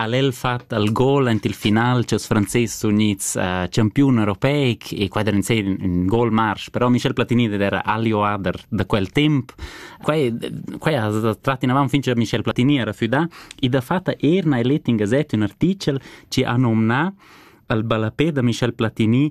ha'l el fat al gol aint il final cha'ls Franzes sun gnits uh, champiun europeic e quai derind ser ün gol marsch, però Michel Platini ed era Alio Ader da quel temp. Quai, quai ha trat inavant fin cha Michel Platini era füdà e da fatta er na el het in gazet ün artichel chi ha nomnà al ballapè da Michel Platini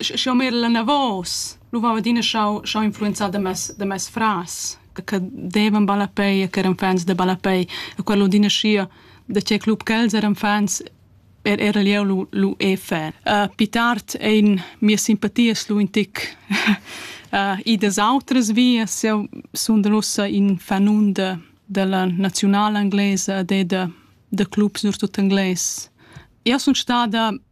Sch'jau m'era enavos, lu veva adina schau schau influenzar da mes da mes frars che che devan ballapei e ch'eran fans da ballapei e quel adina schia da tgei club ch'els eran fans er era jeu lu lu e fan. Pli tard ein mias simpatias lu in tic idas autras vias. Jeu sundel ussa in fanun da dalla naziunala englesa e da da clubs surtut engles. Jeu sun stada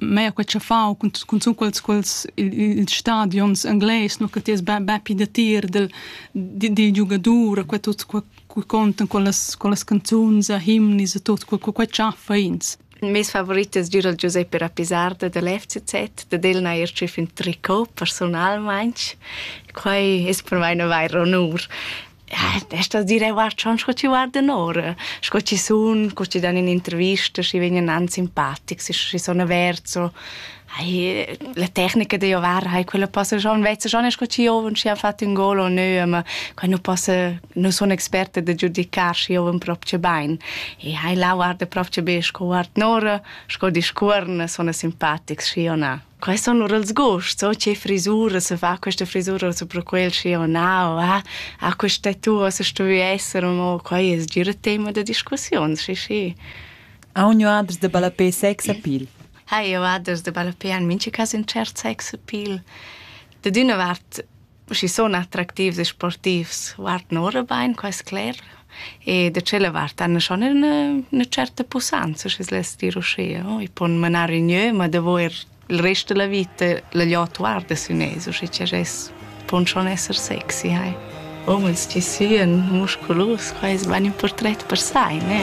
mea quei che fau cun cun quels quels ils stadions engles no che ties be be pi da tir del di di giugadura quei tut quei contan con las con las canzuns a himnis e tut quei quei chaffa ins Mes favorites dura Giuseppe Rappisarda dell'FCZ, da del n'ha er tschef un tricot personalmente. Quai es per mai una vaira onur. Adesso direi, guarda, schon sco ti guardan ora, sco ci sun, co ti dan un'intervista, schi vegnan an simpatics, schi sono verso. Ai, la tecnica de ovar, ai, quella possa schon, vezza schon sco ci ovan, ci ha fatto un gol o nö, ma quando possa, non sono esperta de giudicar, ci ovan proprio bain. E ai, là guarda proprio be, sco guard nora, sco discorna, sono simpatics, schi o na. Quai sun lur els gusts, o che frisura se fa questa frisura su pro quel schi o na, o ah, ah questa tua se stuvi esser, o quai es gira tema da discussiun, sì sì. Ha un adres de balapé sex appeal? Ha io adres de balapé an minci cas in cert sex appeal. Da d'una vart Schi sun attractivs e sportivs guardan ora bain, quai es cler. E da tschella vart han schon üna üna tscherta pussanza, schi's less dir uschea, no? I pon manar in gnö, ma davo eir il rest da la vita la glieud guarda sün els, usche cha es pon schon esser sexy, hai. Umens chi sian musculus, quai es bain ün purtret per sai, ne?